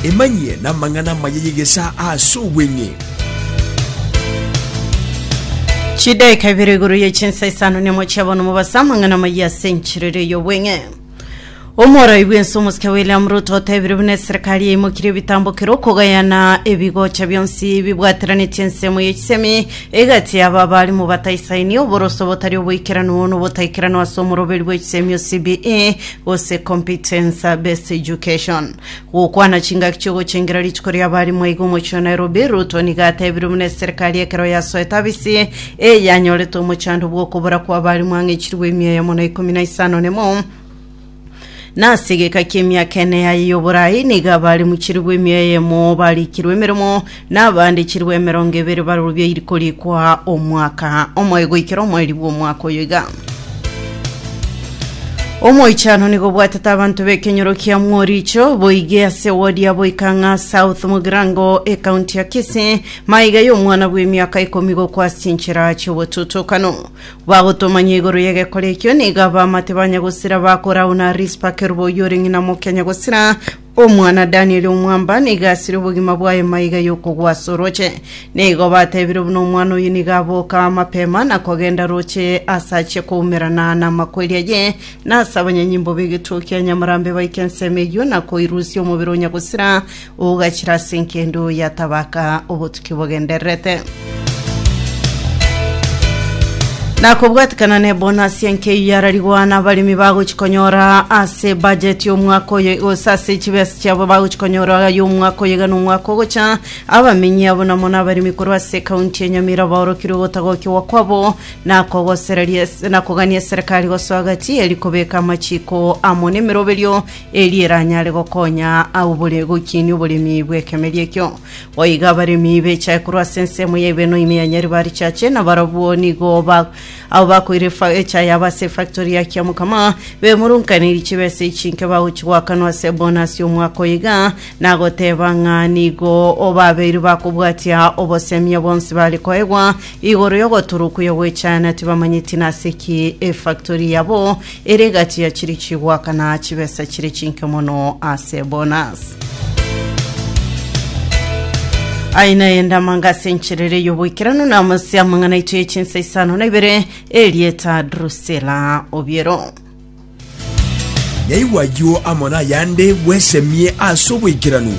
Emanyie namang'ana amaya y'egesaa aase obweng'e. Chidaika ibere igoro ye chinsa isano nemo chia bono mobasa amang'ana amaya ase enchiriri ey'obweng'e. Omorai bwense omosike William Ruto otebire buna eserikari yaimokirie ebitambo kera okogayana ebigocha bionsi bibwateranetie ensemo y'echisemi egati yaba abari mobataisaini oboroso botari oboikeranu nobotaikeranwa ase omoroberi bw'echisemi o CBE gose Competence Based Education. Gokwana chingaki chi'ogochengera rituko ri'abarimu aiga omochie o Nairobi, Ruto nigo atebirwe buna eserikari ekero yasoete abisi eye yanyorete omochando bw'okobora kw'abarimu ang'echirwe emia eyemo na ikomi na isano nemo na ase egeka ki'emiaka ene yaye y'oborai nigo abarimu chilifu emia eyemo barikirwe emeremo Na abande chilifu emerongo ebere barorwe iriko rikoa omwaka omoe goikera omoeri bw'omwaka oyo iga. Omoichano nigo obwatete abanto b'ekenyoro kia Mworicho boige ase wodi ya Boikang'a South mu Girango ekaunti ya Kisii maiga y'omwana bw'emiaka ikomi gokwa ase chinchera chi'obotutokano. Bagotomanya igoro y'egekora ekio nigo abamate ba Nyagosira bakorauna Rispa Kerubo oyio ore ng'ina mokia Nyagosira Omwana Danieli omwamba nigo asire obogima bwaye maiga y'okogwa ase orooche. Nigo batebire buna omwana oyio nigo aboka amapema na kogenda rooche ase achia koumerana namakweri aye, na ase abanyanyimbo b'egeturo kia nyamarambe baike ensemo eyio na koirusia omobere o Nyagosira ogachira ase enkendo yatabaka obotukia. kibogendererete. Na kobwatikana ne bonasi enkeyia ararigwa na abaremi bagochi konyora ase budget y'omwaka oyo gose ase chibesa chiabo bagochi konyora y'omwaka oyo iga na omwaka ogocha abamenyi abo namo na abaremi korwa ase ekaunti ya Nyamira baorokirwe gotagokiwa kwabo na kogosereria na kogania serikali gosoa gati eri kobeka amachiko amo na emeroberio eri eranyare gokonya abore gokinia oboremi bw'ekemeri ekio Boigo abaremi becha ekorwa ase ensemo ya Ibeno ime ya Nyaribarichache, na barabwo nigo ba abo bakoire efa- echa yabo ase efactory ya Kiamokama, bemurunkaniri chibesa echi inke bagochi goakanwa ase ebonasi y'omwaka oyo iga, nagoteba ng'a nigo babeire bakobwatia obosemia bonsi bare koegwa igoro y'ogotorwa okuya gw'echa, na tibamanyeti nase ki efactory yabo Ere egachia chiri chigwaka na chibesa chire chinke mono ase bonus. Aina y'endamanga ase encherere y'oboikeranu na amase amang'ana aito ye chinsa isano na ibere erieta Drusilla Obiero. Naigwa ayio amo nayande bwesemie ase oboikeranu.